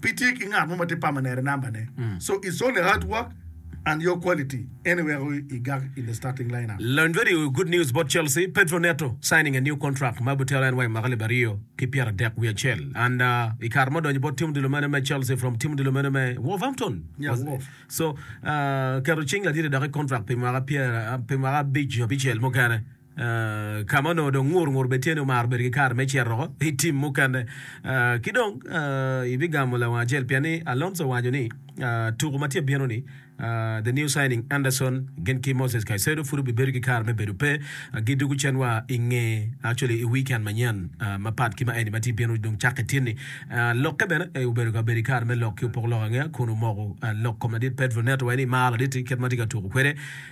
pe tye ki ngat mo ma tye permanent number ne. Mm. So it's only hard work and your quality ene weko i gag in the starting lineup. Lony very good news about Chelsea. Pedro Neto signing a new contract ma butero en wa i mwaka alip aryo ki pyeradek wiye acel and uh, i kare ma odonyo bot tim odilo mene me Chelsea from tim odilo mene me Wolverhampton. Yeah, Was- Wolf. So uh, keto cing ladit dok i contract pi mwaka pyer uh, pi mwaka abic nyo abicel mukene. ka ma onongo dong ngur ngur bene tye ni omaro bedo ki kare me cito i tim mukene. Ki dong ibigamo lawang acel pien ni Alonso owaco ni tuku ma tye ka bino-ni, the new signing Anderson gin ki Moses Caicedo pud obibedo ki kare me bedo pe gidwogo cen wa i nge actually i weekend manyen mapat ki ma eni ma tye ka bino dong cakke tin-ni. Lokke bene obedo ka bedo ki kare me lok ki opoko lok angeya kun omoko lok kom ladit Pedro Neto wai ni maro ladit-ti kit ma tye ka tuku kwede.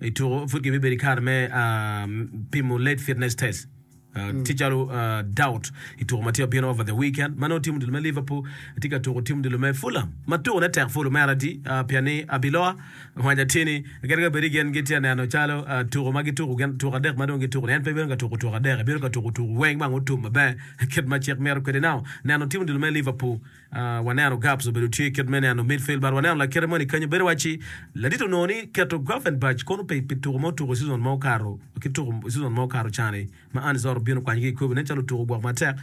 I tuko, pud kibibedo i kare me pimo late fitness test tye calo Doubt i tuko ma tye bino over the weekend ma nongo tim odilo me Liverpool tye ka tuko tim odilo me Fulham ma tukone tek pud omera adi pien ni abiloa ngwanya tye ni gin ka bedi gin gitye neno calo tuko ma gituko gin tuko adek ma dong gituko en pe bino ka tuko tuko adek ebino ka tuko tuko weng ma nongo otum maber kit ma cik mito kwede now neno tim odilo me Liverpool Waneno Gabs obedo tye kit me neno midfield but waneno lakite moni kenyo bedo wacci ladit onongo ni keto Gravenberch kono pe pi tuko ma otuko season ma okato ki tuko season ma okato cani ma Arne Slot obino kwanyo ki i Kobe nen calo otuko gwok matek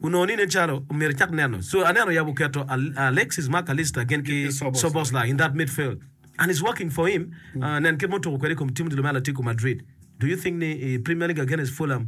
onongo ni nen calo omyero ecak neno so aneno oyabo oketo Alexis Mac Allister gin ki Szoboszlai in that midfield and it's working for him nen kit ma otuko kwede i kom tim odilo me Atletico Madrid do you think ni i Premier League against Fulham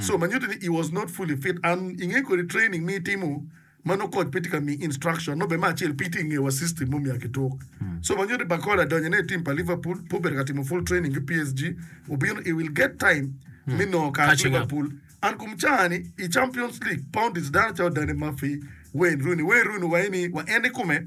So ma nyuto ni he was not fully fit and inge kodi training ma itimo ma nongo coach pe tye ka miyi instruction nongo bene me acel pe itye ka ngeyo wa system mo me ya ki tuk. So ma nyuto ni Barcola donyo ne i team pa Liverpool pe obedo ka timo full training ki PSG obino he will get time me nongo kare ki Catching up. Liverpool and kum caa ni i Champions League poundis dano calo Dani Murphy, Wayne Rooney, Wayne Rooney wa ini wa en ikome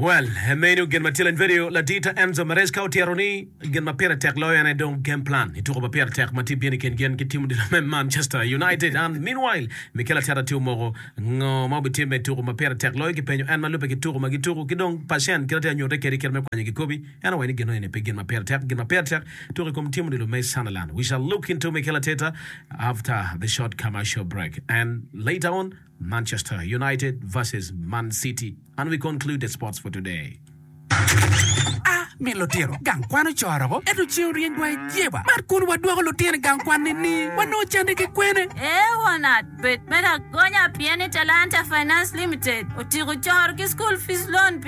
Well, e meno gin ma Tilen Vedio ladita Enzo Maresca otito ni, Gin ma pire tek loyo en aye dong game plan. I tuko ma pire tek ma tye bino i kin gin ki tim odilo me Manchester United, an meanwhile Mikel Arteta tye omoko ngo ma obitimme i tuko ma pire tek loyo kipenyo en ma lubbe ki tuko ma gituko ki dong pacen kit atye anyute kede kite me kwanyo kikobi en owaco ni gino eni pe gin ma pire tek gin ma pire tek tuko i kom tim odilo me Sunderland we shall look into Mikel Arteta after the short commercial break and later on Manchester United vs Man City and we conclude the sports for today. A Mi lutino gang kwan ocoro woko ento ceng oryeny wa i jeba. Mar kun wadwoko lutino i gang kwan ni ni wanongo cande ki kwene? A Wanat bed me lagonya pien ni Talanta Finance Limited otiko coro ki school fees loan pi.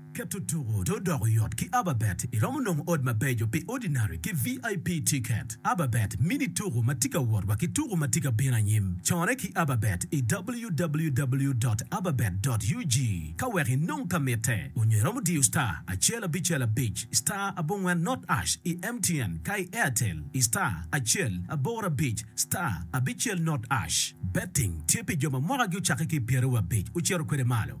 Keto tuku to odoko yot ki Ababet, iromo nongo ot mabeco pi Ordinary ki VIP tiket. Ababet mini tuku ma tye ka wot wa ki tuku ma tye ka bino anyim. Corre ki Ababet i www dot ababet dot ug ka wek inong ka mitte, onyo iromo diyo star acel abicel abic star abongwen not ash i MTN ka i Airtel i star acel aboro abic star abicel not ash. Betting tye pi jo ma mwakagi ocakke ki i pyeraryo abic ocito kwede malo.